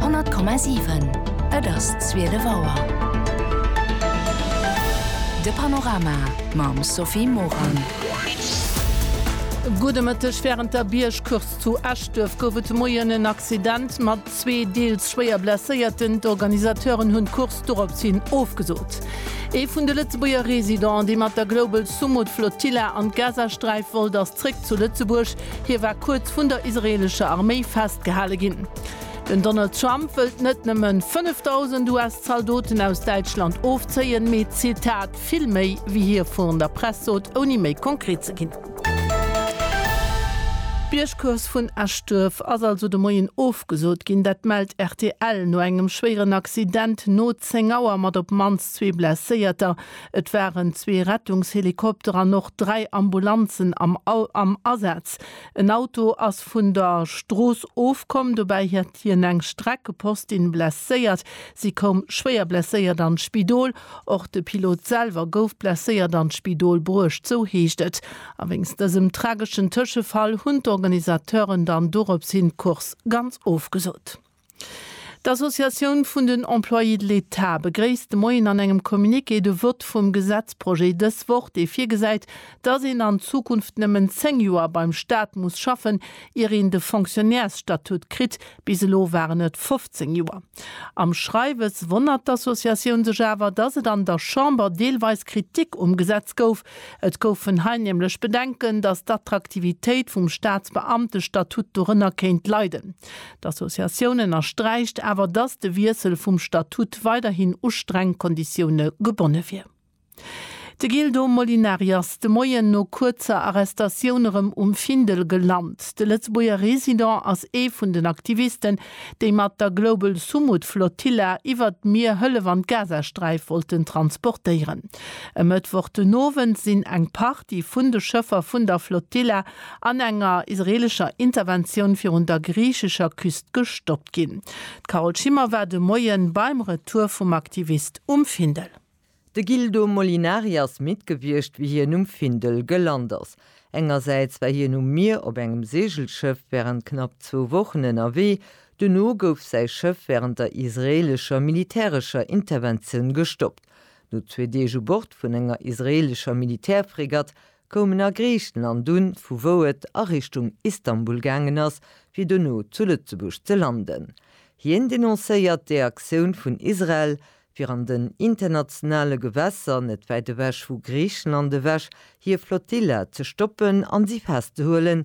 100,7 Et ass 12 Auer. De Panorama mam Sophie Morang. Gudde Mëtteg. Wärend der Biergcourse zu Eschduerf gouf et de Moien en Accident mat zwee deels schwéier Blesséierten. D'Organisateuren hunn d'Course dorops hin ofgesot. Ee vun de Lëtzebuerger Residenten, dee mat der Global Sumud Flotilla an d'Gazasträif wollt, ass zréck zu Lëtzebuerg. Hie war kuerz vun der israeelescher Arméi festgehale ginn. Den Donald Trump wëllt net nëmme 5.000 US-Zaldoten aus Däitschland ofzéien, mee, Zitat, vill méi, wéi hie virun der Press sot, ouni méi konkret ze ginn. D'Biergcourse vun Eschduerf ass also de Moien ofgesot ginn. Dat mellt rtl no engem schwéieren Accident no 10 Auer mat op d'mannst zwee Blesséierter. Et waren zwee Rettungshelikopter an och dräi Ambulanzen am Asaz. En Auto ass vun der Strooss ofkomm, dobäi hat hien eng Streckepostin blesséiert. Si koum schwéier blesséiert an d'Spidol. Och de Pilot selwer gouf blesséiert an d'Spidol bruecht, sou heescht et. A wéinst dësem trageschen Tëschefall hunn d'Organisateuren dann doropshin d'Course ganz ofgesot. D'Associatioun vun den Employés de l'État begréisst de Moien an engem Communiqué de Vott vum Gesetzprojet dës Woch, dee virgesäit, datt een an Zukunft nëmmen 10 Joer beim Staat muss schaffen, ier een de Fonctionnairsstatut kritt. Bis elo waren et 15 Joer. Am Schreiwes wonnert d'Associatioun sech awer, datt et an der Chamber deelweis Kritik um Gesetz gouf. Et goufen hei nämlech Bedenken, datt d'Attraktivitéit vum Staatsbeamtestatut dorënner kéint leiden. D'Associatioun ënnersträicht awer, datt de Wiessel vum Statut weiderhin u streng Konditioune gebonne wier. De Gildo Molinari ass de Moien no kuerzer Arrestatioun erëm um Findel gelant. De Lëtzebuerger Resident ass ee vun den Aktivisten, déi mat der Global Sumud Flotilla iwwert d'Mier Hëllef an d'Gazasträif wollten transportéieren. E Mëttwoch den Owend sinn eng Partie vun de Schëffer vun der Flotilla an enger israeelescher Interventioun virun der griichescher Küst gestoppt ginn. D'Carole Schimmer war de Moien beim Retour vum Aktivist um Findel. De Gildo Molinari ass midd gewiescht, wéi hien um Findel gelant ass. Engersäits war hien um Mier op engem Seegelschëff wärend knapp zwou Wochen ënnerwee. Duerno gouf säi Schëff wärend der israeelescher militärescher Interventioun gestoppt. No zwee Deeg u Bord vun enger israeelescher Militärfregatt koum en a Griichen an dunn, vu wou et a Richtung Istanbul gaangen ass, fir dono zu Lëtzebuerg ze landen. Hien denoncéiert d'Eaktioun vun Israel, fir an den internationale Gewässer net wäit ewech vu Griichenland ewech hir Flotilla ze stoppen an si festzehuelen,